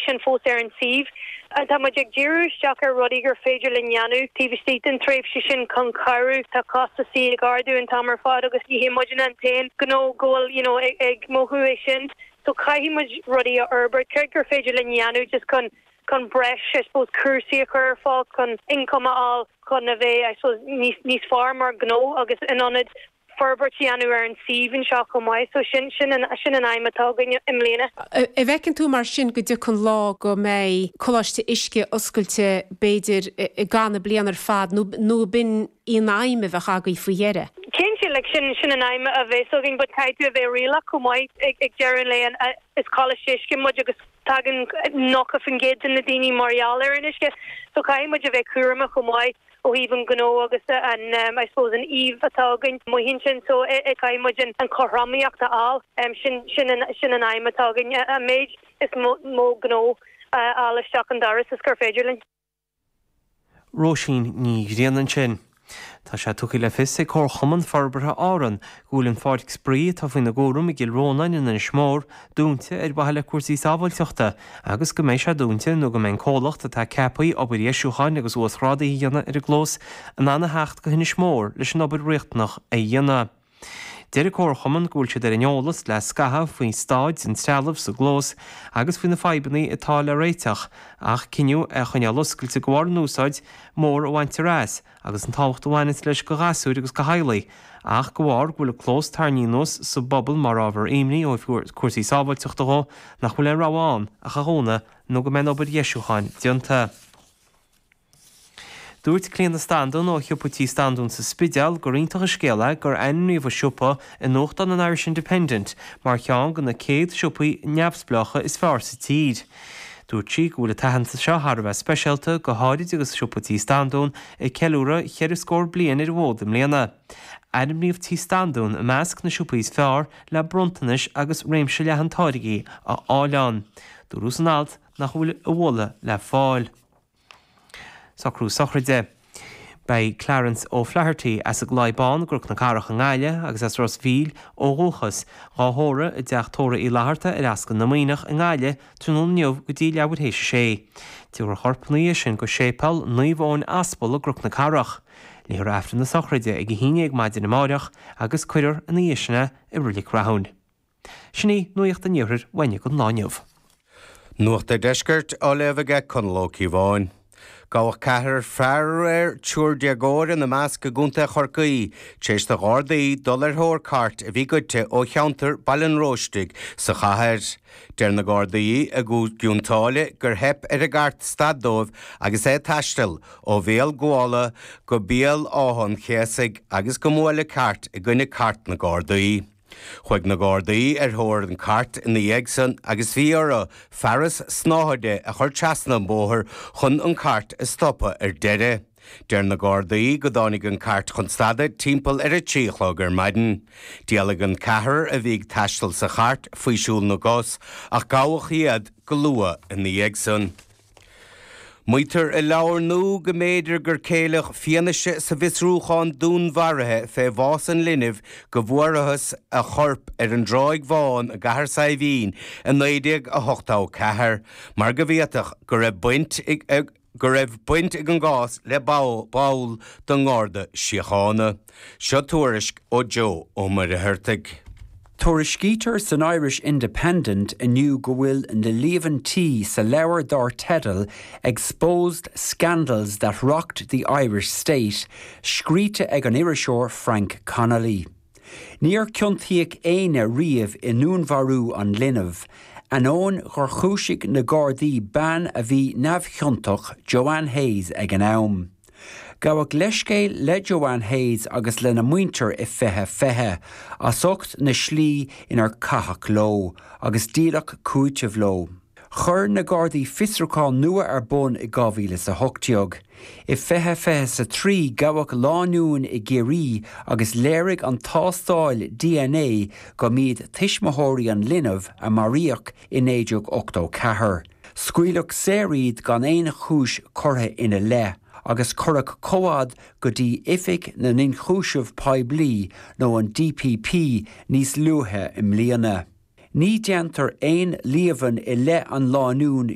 sin fós ar an suíomh. Tá muid ag díriú isteach ar rudaí gur féidir linn dhéanamh taobh istigh den tréimhse sin chun cabhrú. Tá costasaí ag ardú an t-am ar fad agus ní hé muidne an t-aon ghnó go bhfuil you know ag mothú é sin. So caithfidh muid rudaí a fhorbairt, céard gur féidir linn dhéanamh just chun chun breis I suppose cúrsaí a chur ar fáil, chun income a fháil, chun a bheith I suppose níos níos fearr mar ghnó agus in ionad forbairt a dhéanamh ar an suíomh anseo chomh maith so sin, sin, sin an aidhm atá againn i mbliana. An bhfeiceann tú mar sin go dtiocfaidh lá go mbeidh Coláiste Uisce oscailte b'fhéidir i gcaith na bliana ar fad nó, nó ab in í an aidhm a bheadh agaibh faoi dheireadh? 'Sea, like, sin, sin an aidhm a bheas againn but caithfidh tú a bheith réalaíoch chomh maith ag, ag deireadh an lae an, is Coláiste Uisce muid agus tagann 90% de na daoine mar gheall ar an uisce so caithfidh muid a bheith cúramach chomh maith. ó thaobh an ghnó agus an I suppose an íomhá atá againn amuigh ansin so caithfidh muid an an cothromaíocht a fháil sin sin an sin an aidhm atá againn an méid is mó gnó a fháil isteach an doras is gur féidir linn. Róisín Ní Ghrianna ansin. Tá sé tugtha le fios ag Comharchumann Forbartha Árann go bhfuil an pháirc spraoi atá faoina gcúram i gCill Rónáin in Inis Mór dúnta ar mhaithe le cúrsaí sábháilteachta agus go mbeidh sé dúnta nó go mbeidh an comhlacht atá ceaptha le obair dheisiúcháin agus uasghrádaithe a dhéanamh ar an gclós in ann a theacht go hInis Mór leis an obair riachtanach a dhéanamh. Deir an Comharchumann go bhfuil siad ar an eolas le scaitheamh faoi stáid an trealaimh sa gclós agus faoi na fadhbanna atá le réiteach ach cinneadh é a choinneáil oscailte de bharr an úsáid mhór a bhaintear as agus an tábhacht a bhaineas leis go ghasúir agus go theaghlaigh, ach go bharr go bhfuil an clós tarraingthe anuas sa bpobal mar ábhar imní ó thaobh cúrsaí sábháilteachta dhó, nach bhfuil aon rogha ann ach é a dhúnadh nó go mbeidh an obair dheisiúcháin déanta. Dúirt Clíona Standún ó Shiopa Tí Standún sa Spidéal gur iontach an scéal é gur ainmníodh an siopa i nuachtán an Irish Independent mar cheann de na 100 siopaí neamhspleácha is fearr sa tír. Dúirt sí go bhfuil an t-aitheantas seo thar a bheith speisialta, go háirid agus Siopa Tí Standún ag ceiliúradh cheithre scór bliain ar an bhfód i mbliana. Ainmníodh Tí Standún i measc na siopaí is fearr le bronntanais agus réimse leathan táirgí a fháil ann. Dúradh san alt nach bhfuil a mhacasamhail le fáil. Socrú sochraide. Beidh Clarence O'Flaherty, as an gCloich Bán i gCnoc na Cathrach i nGaillimh agus as Ros Mhíl ó dhúchas, dhá thórramh i dTeach Tórraimh Uí Fhlatharta ar Ascaill na Muimhneach i nGaillimh tráthnóna inniu go dtí leathuair théis a sé. Tiúrfar an corp ina dhiaidh sin go Séipeal Naomh Eoin Aspal i gCnoc na Cathrach. Léifear Aifreann na sochraide ag a haon dhéag maidin amáireach agus cuirfear ina dhiaidh sin é i Reilig Rathúin. Sin í nuacht an Iarthair uainn i gCúige Chonnacht inniu. Nuacht an Deiscirt á léamh aige Conall Ó Cíobháin. Gabhadh ceathrar fear aréir, triúr déagóir ina measc, i gContae Chorcaí tar éis do Ghardaí dul ar thóir cairt a bhí goidte ó cheantar Bhaile an Róistigh sa chathair. Deir na Gardaí i gCionn tSáile gur theip ar an gcairt stad dóibh agus é ag taisteal ó Bhéal Ghuala go Béal Átha an Chéasaigh agus gur buaileadh an chairt i gcoinne cairt na Gardaí. Chuaigh na Gardaí ar thóir an cairt ina dhiaidh san agus bhí orthu fearas snáthaide a chur trasna an bóthar chun an cairt a stopadh ar deireadh. Deir na Gardaí go dtáinig an cairt chun stad timpeall ar a trí a chlog ar maidin. D'éalaigh an ceathrar a bhí ag taisteal sa chairt fé shiúl na gcos ach gabhadh iad go luath ina dhiaidh san. Maítear i leabhar nua go mb'fhéidir gur ceileadh fianaise sa bhfiosrúchán dúnmharaithe fé bhás an linbh go bhfuarathas a chorp ar an dTráigh Bhán i gCathair Saidhbhín i 1984 mar go bhféadfadh go raibh go raibh baint ag an gcás le ball den nGarda Síochána. Seo tuairisc ó Joe Ó Muircheartaigh. Tuairiscítear san Irish Independent inniu go bhfuil na líomhaintí sa leabhar dár teideal 'Exposed Scandals that Rocked the Irish State' scríte ag an iriseoir Frank Connolly. Níor ciontaíodh éinne riamh i ndúnmharú an linbh, ainneoin gur chúisigh na Gardaí bean a bhí neamhchiontach, Joanne Hayes, ag an am. Gabhadh leithscéal le Joanne Hayes agus lena muintir i 2020 as ucht na slí inar caitheadh leo agus díoladh cúiteamh leo. Chuir na Gardaí fiosrúchán nua ar bun i 2018. I 2023 gabhadh lánúin i gCiarraí agus léirigh an tástáil DNA go mb'iad tuismitheoirí an linbh a maraíodh i 1984. Scaoileadh saor iad gan aon chúis curtha ina leith agus cuireadh comhad go dtí Oifig na nIonchúiseamh Poiblí nó an DPP níos luaithe i mbliana. Ní déantar aon líomhain i leith an lánúin